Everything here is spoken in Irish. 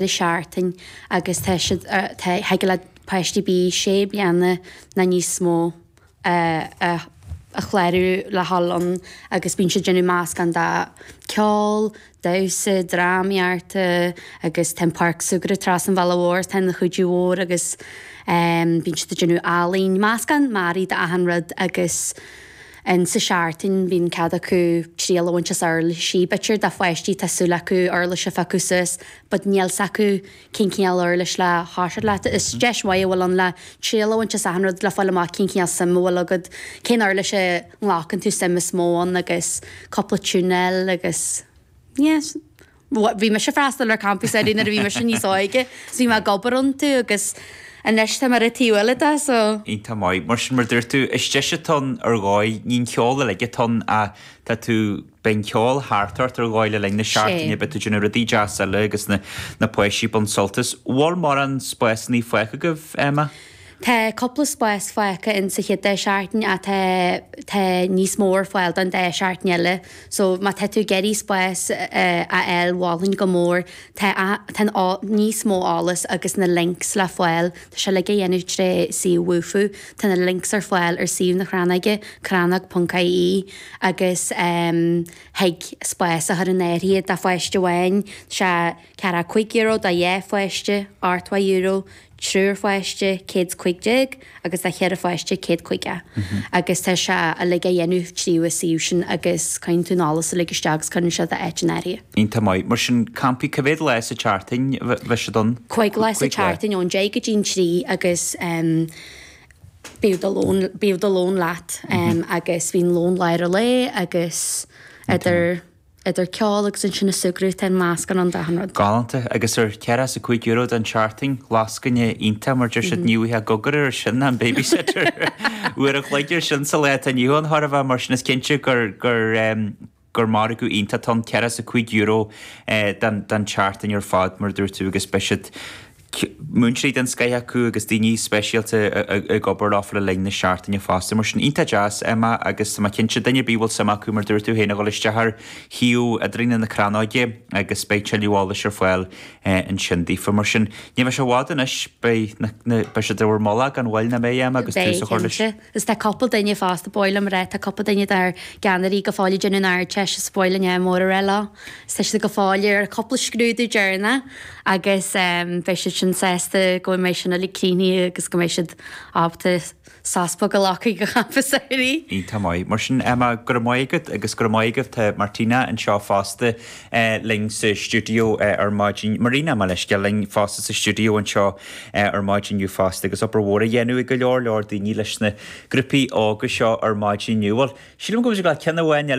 de sheachtain agus tá siad, tá thig le páistí bíodh sé bliana ná níos mó, a chlárú le dhul ann agus bíonn siad ag déanamh meascán de ceol, damhsa, drámaíochta agus tá an páirc súgartha trasna an bhealaigh mhóir atá ina chuidiú mhór agus bíonn siad ag déanamh ealaín, meascán mearaí d'achan rud agus. Insa tseachtain bíonn cead acu triail a bhaint as uirlisí. B'fhéidir do pháistí, tá súil acu uirlis a phiocadh suas, but níl 's acu cén cineál uirlis le toiseacht leis. Is deis mhaith a bhfuil ann le triail a bhaint as achan rud, le fáil amach cén cineál suim a bhfuil agad, cén uirlis a nglacann tú suim is mó ann agus cúpla tiúin a fháil agus yeah. Bhí mise ag freastal ar campaí samhraidh nuair a bhí mise níos óige so bhí mé ag obair iontu agus anois tá mé ar an taobh eile de so. Iontach maith. Mar sin, mar a dúirt tú, is deis atá ann ar dhóigh, ní an ceol uilig atá ann ach tá tú, beidh an ceol thart ort ar dhóigh le linn na Sea. seachtaine, beidh tú ag déanamh rudaí deasa eile agus na, na páistí ag baint sult as. An bhfuil mórán spásannaí fágtha agaibh, Emma? Tá cúpla spás fágtha in sa chéad dá sheachtain ach tá tá níos mó ar fáil don dá sheachtain eile so má tá tú ag iarraidh spás a fháil mholfainn go mór tá tá an níos mó eolas agus na links le fáil tá sé uilig á dhéanamh tré suíomh Wufoo tá na links ar fáil ar suíomh na Crannóige crannóg ponc ie agus thig spás a chur in áirithe do pháiste amháin tá sé ceathracha cúig euro do dhá pháiste ochtó euro triúr pháiste, céad 's cuig déag, agus do cheithre pháiste, céad caoga. Agus tá sé uilig á dhéanamh tríd an suíomh sin agus caitheann tú an eolas uilig isteach agus cuireann siad d'áit in áirithe. Iontach maith. Mar sin, campaí, cé mhéad lá sa tseachtain a bheidh siad ann? Cúig lá sa tseachtain, ón deich go dtí an trí agus bíodh do lón, bíodh do lón leat agus bíonn lón lár an lae agus idir. idir ceol agus ansin na súgradh tá meascán ann d'achan rud. Galánta. Agus ar ceathracha is a cúig euro don tseachtain, lascaine iontach mar deir siad ní bhfuighfeá gcogar ar sin ná an babysitter. Uair an chloig ar sin sa lá atá inniu ann chóir a bheith mar sin is cinnte gur gur em gur margadh iontach atá ann ceathracha is a cúig euro eh don don tseachtain ar fad mar a dúirt tú agus beidh siad múinteoirí den scoith acu agus daoine speisialta ag obair leo le linn na seachtaine fosta. Mar sin, iontach deas, Emma, agus tá mé cinnte, duine ar bith a bhfuil suim acu, mar a dúirt tú féin, a dhul isteach ar shuíomh idirlín na Crannóige agus beidh tuilleadh eolais ar fáil ansin daofa. Mar sin, ní bheidh sé i bhfad anois, beidh sé in bhur mullach gan mhoill, nach mbeidh, Emma, agus tús a chur leis? Is tá cúpla duine fosta ba mhaith liom a rá, tá cúpla duine dár gceannairí go fóill ag déanamh an Ardteist is ba mhaith linn ádh mór a rá leo. Is tá siad go fóill ar chúpla scrúdú deireanach agus beidh siad sin sásta go mbeidh sin uilig críochnaithe agus go mbeidh siad ábalta sos beag a ghlacadh go campa samhraidh. Iontach maith. Mar sin, Emma, go raibh maith agat agus go raibh maith agat Martina anseo fosta. linn sa stiúideo ar maidin. Marina, mo leithscéal, linn fosta sa stiúideo anseo ar maidin inniu fosta agus obair mhór á dhéanamh ag go leor leor daoine leis na grúpaí óga seo ar maidin inniu. Bhuel, sílim go mbeidh muid ag gabháil le ceann amháin eile.